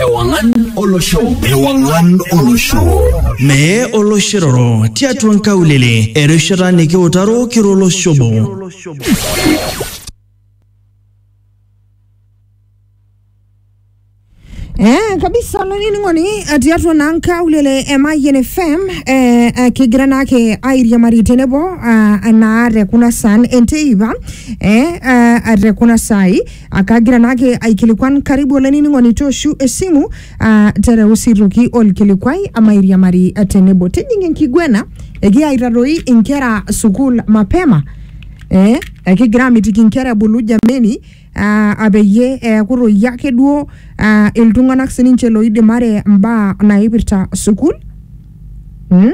Ewangan Olosho. Ewangan Olosho. Mee oloshiroro tiatua nkaulele erishata nikiutaro kiro oloshobo. Eh, kabisa olainining'oni eh, tiatua naa nkaulele e Mayian FM eh, eh, kigira naake airiamari tenebo ah, naa te kuna saan enteipa eh, ah, te kuna saai Akagira naake aikilikuan karibu olainining'oni tooshu esimu ah, tereu sii toki olkilikuai amairiamari ah, tenebo tijing enkiguena ekiya aitadoi inkera sukuul mapema eh, ekigira amitiki inkera ebulu jameni ah, apeyie eeku toi ake duo ah, iltung'anak sininche loidimare imbaa naipirta sukuul mm?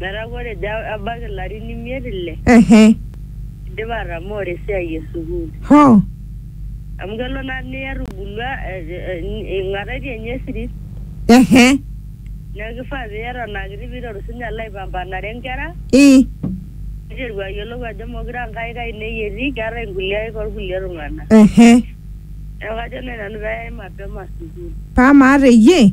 Metaa ore ejo ebaiki ilarin imiet ile, ehe idipa atamooro esiai e sukuul. hoo Amu kelo naa niya etubulua eh, eh, ing'ataitie ninye esirit. ehe Neeku kifaa pee eton aa kiti pee iteru sii ninye alo aipampanare nkera, i niteru ayiolou ajo meekure aa nkaik ainei etii, keetae inkulie aik oo kulie tung'anak. ehe Neeku kajo naaji nanu pee eyai mapema sukuul. paa maata eyie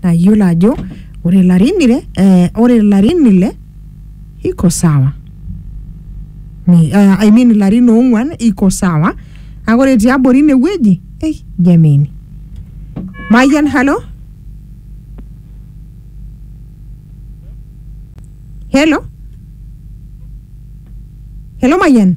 tayiolo ajo ore ilarin ile eh, ore ilarin ile iko sawa Ni- eh, I mean ilarin oong'uan iko sawa kake ore tiabori inewueji eh, jameni mayian halo helo helo mayian